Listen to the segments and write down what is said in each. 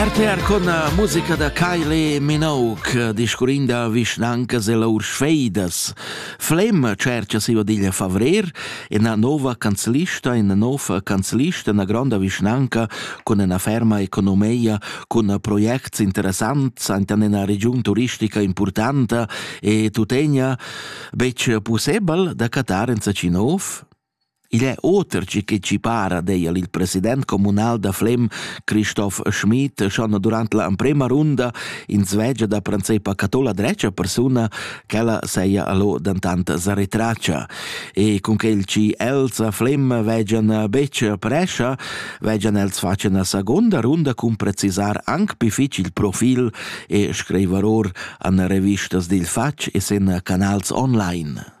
RTR con eh, musica da Kylie Minogue, discurrin da vischnancas e lur sfeidas. Flem cerca si vadiglia favrer ina nova canzlista, ina nova canzlista, una grande vischnanca con una ferma economia, con proiects interessanti in una regione turistica importante e tutenia bec possibile da Qatar in Sachinov? Igl è oter che che chi para, deia il president communal da Flem, Christoph Schmid, schon durant la emprema runda in svegia da pranzepa catola drecia persuna, ch'ella seia allo dantant sa retracia. E cun quel ci els a Flem vegian betg prescha, vegian els facen a seconda runda cun precisar anc pi fitg il profil e screiveror an revistas dil fatg e sen canals online.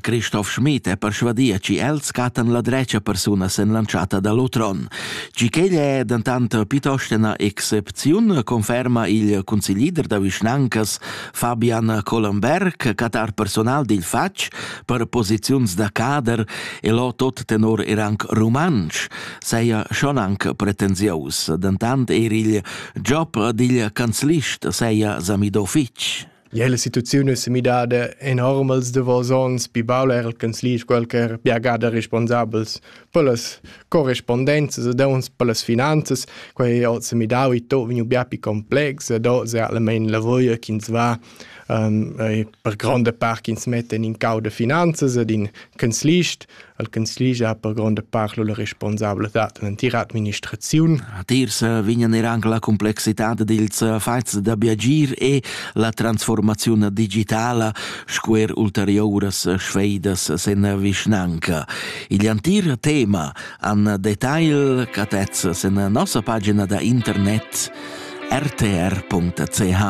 Christoph Schmid è persvadia che els cattan la drecia persuna sen l'antschatta da l'otron. Gi ch'egl è dentant piuttost ina excepziun, conferma il consiglier da vischnancas Fabian Collenberg, catar personal dil fatg per posiziuns da cader e lo tot tenor er anc rumantsch, seia schon anc pretensiaus, dentant er il job digl canzlist seia samido fitg. Ja, la situaziun es midada enorm els davos ons, pi baul eir al canzlich qualcher biagà da responsabels per las correspondenzas ed ons per las finanzas. Quai hoz s'ha midau e to vegnu bia pi complex ed hoz è almain la vöia chi'ns va um, per gronda part chi'ns mettan in cau da finanzas ed in canzlist al consiglier ha per gronda part la responsabladad en l'entira administraziun. A tirs vignan er anche la complexità dils fatgs d'abbiagir e la transformaziun digitala sco er ulteriuras sfeidas sen vischnanca. Igl antir tema an detail catez sen nossa pagina da internet rtr.ch.